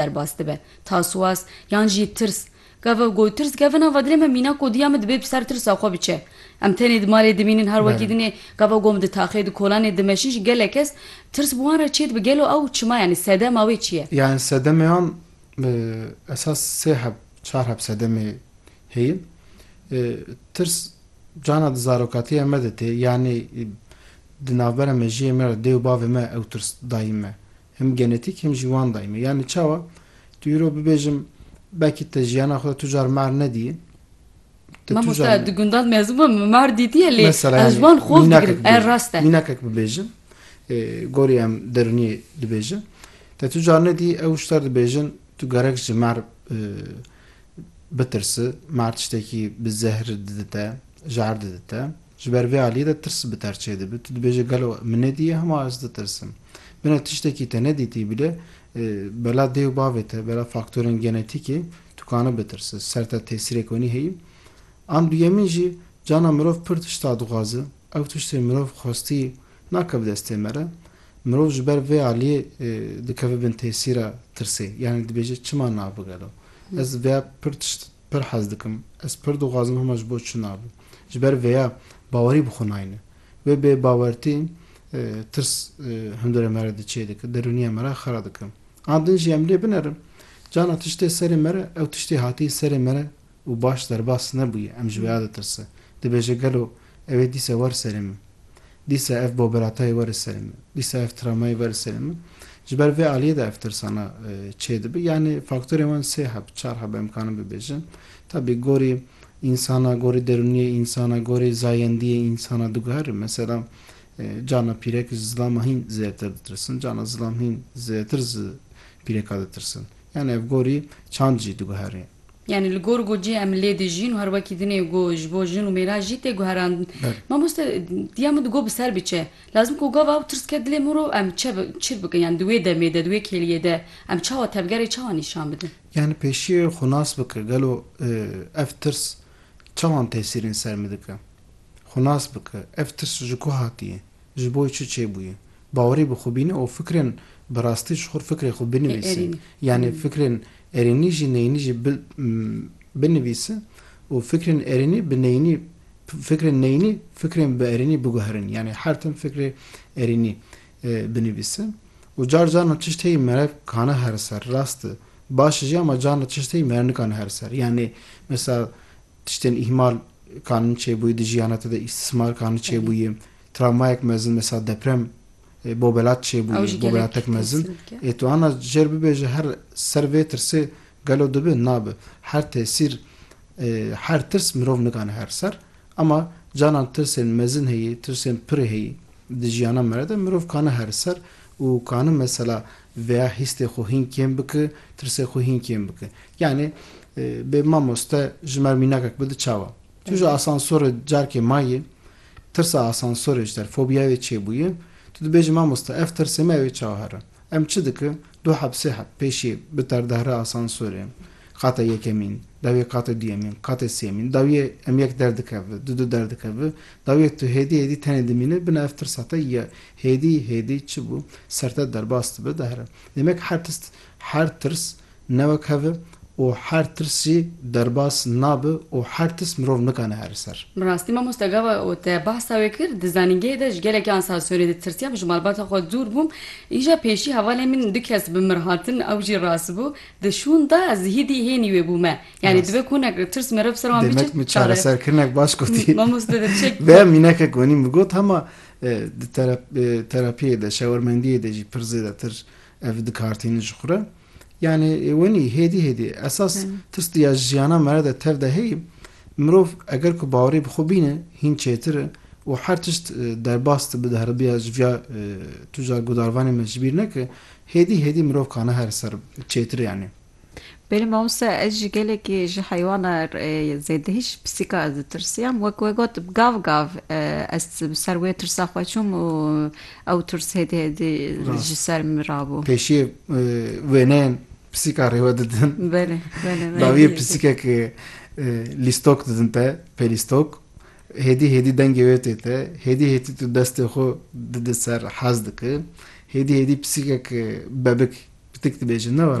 derbas dibe, taswas yan jî tirs. Gava ku tirs kevina va dilê me mîna ku diya min dibê bi ser tirsa xwe biçe. Em tenê di malê dimînin her wekî din ê. Gava ku em di taxê, di kolanê dimeşin jî gelek kes tirs bi wan re çê dibe. Gelo ew çima yanî sedema wê çi ye? Yanî sedemê wan bi esas sê heb, çar heb sedemê heye. Tirs carna di zarokatiya me de tê. Yanî di navbera mejiyê me re dê û bavê me ew tirs dayîn me. Him genetîk him jî wan dayî me. Yanî çawa? Tu îro bibêjim belkî te jiyana xwe de tu car mahr nedîyî. Mamoste ez di gundan mezin bûm min mahr dîtiye lê ez wan xov digirim. Ev rast e. Mînakek bibêjim gorî em derûniyê dibêjin. Te tu car nedî ew wişter dibêjin tu gerek ji mahr bitirsi. Mahr tiştekî bi zehr dide te, jar dide te. Ji ber vê aliyê de tirs bi ter çêdibe. Tu dibêje gelo min nedîye hema ez ditirsim. Bine tiştekî te nedîtî bile bela dê û bavê te, bela faktorên genetîkê tu kane bitirse. Ser te tesîrek wenî heye. An duyemîn jî cana mirov pir tişta dixwaze. Ew tiştê mirov xwestî nake bi destê me re. Mirov ji ber vê aliyê dikeve bin tesîra tirsê. Yanî dibêje çima nabigelo. Ez vêya pir tişt Pir hez dikim. Ez pir dixwazim hema ji bo çina bû. Ji ber vêya bawerî bi xwe nayne. Wê bêbawertî tirs hundirê me re diçê dike, derûniya me re xera dike. An din jî em lê binerin. Cana tiştê serê me re, ew tiştê hatî serê me re û baş derbas nebûye, em ji wêya ditirsin. Dibêje gelo Ew ê dîsa war serê min. Dîsa ev boberatayê war li serê min. Dîsa ev travmayê war li serê min. Ji ber vê aliyê de ev tirsana çê dibe. Yanî faktorên wan sê heb, çar heb em karin bibêjin. Tabî gorî însana, gorî derûniyê însana, gorî zayendiyê însana diguhere. Mesela cana pîrek ji zilama hîn zêdetir ditirsin. Cana zilam hîn zêdetir ji pîreka ditirsin. Yanî ev gorî çand jî diguhere. Yanî li gor ku cî em lê dijîn û her wekî dinê ku ji bo jin û mêran jî tê guherandin. Mamoste diya min di got bi ser biçe. Lazim ku gava ew tirs ket dilê min ro em çi çi bikin yanî di wê demê de di wê kêliyê de em çawa tevgerê çawa nîşan bidin. Yanî pêşiyê xwe nas bike gelo ev tirs çawan tesîrên ser min dike. Xwe nas bike ev tirs ji ku hatiye. Ji bo çi çêbûye? Bawerê bi xwe bîne û fikrên bi rastî ji xwe û fikrê xwe binivîse. Yanî fikrên erênî jî neyînî jî binivîse û fikrên erênî bi neyînî fikrên neyînî fikrên bi erênî biguherin. Yanî her tim fikrê erênî binivîse û car caran tişt heye mere kane here ser. Rast e baş jî ama carna tişt heye mere nikane here ser. Yanî mesela Tiştên îhmal kanin çêbûyî di jiyana te de îstismar kanin çêbûyî. Travmayek mezin mesela deprem bobelat çêbûyî, bobelatek mezin. Ê tu ana jer bibêje her ser vê tirsê gelo dibi? Nabi. Her tesîr her tirs mirov nikane her ser ema canan tirsên mezin heyî, tirsên pirê heyî di jiyana me re de mirov kane her ser û kanin mesela Veya hîstê xwe hîn kêm bike, tirsê xwe hîn kêm bike. Yanî bê mamoste ji mer mînakek bi di çawa? Tu ji asansorê carkê mayî, tirsa asansorê ji te, fobîyayê wê çêbûye, tu dibêjî mamoste ev tirsê me ew ê çawa here? Em çi dikin? Du heb sê heb pêşî bi terdehre asansorê, qata yekemîn, dawiyê qatê duyemîn, qatê sêyemîn, dawiyê em yek derdikeve, du du derdikeve, dawiyê tu hêdî hêdî tenê dimîne, bina ev tirsa te ye. Hêdî hêdî çi bû? Ser te derbas dibe dehre. Demek her tist, her tirs ne wek hev e û her tirs jî derbas nabe û her tist mirov nikane here ser. Bi rastî mamoste gava û te behsa wê kir, di zanîngehê de ji gelekî ansasyonê ditirsiyam, ji malbata xwe dûr bûm. Îja pêşî hevalên min du kes bi mir hatin, ew jî rast bû. Di şûn de ez hîdî hênî wê bûme. Yanî dibe ku hinek tirs meriv ser wan bîçe. Demek min çareserkirinek baş gotî. Mamoste de çek. Vê mînekek wenî min got hema Di terapiyê de, şewermendiyê de jî pir zêdetir ev dikartînin ji xwe re. Yanî wenî hêdî hêdî esas tirs di ya jiyana me re de tev de heye. Mirov eger ku bawerî bi xwe bîne hîn çêtir e û her tişt derbas dibe di heribiya ji viya tu jar gudarvanê me ji bîr neke hêdî hêdî mirov kane her ser çêtir e yanî. Belê mamoste ez jî gelekî ji heywana zêdehî ji pisîka ez ditirsiyam wek we got bi gav gav ez bi ser wê tirsa xwe çûm û ew tirs hêdî hêdî ji ser min rabû. Pêşiyê wêneyên pisîka rêwe didin. Belê belê belê. Dawiyê pisîkek lîstok didin te pêlîstok hêdî hêdî dengê wê tê te hêdî hêdî tu destê xwe didi ser hez diki hêdî hêdî pisîkek bebik pitik dibêje ne were.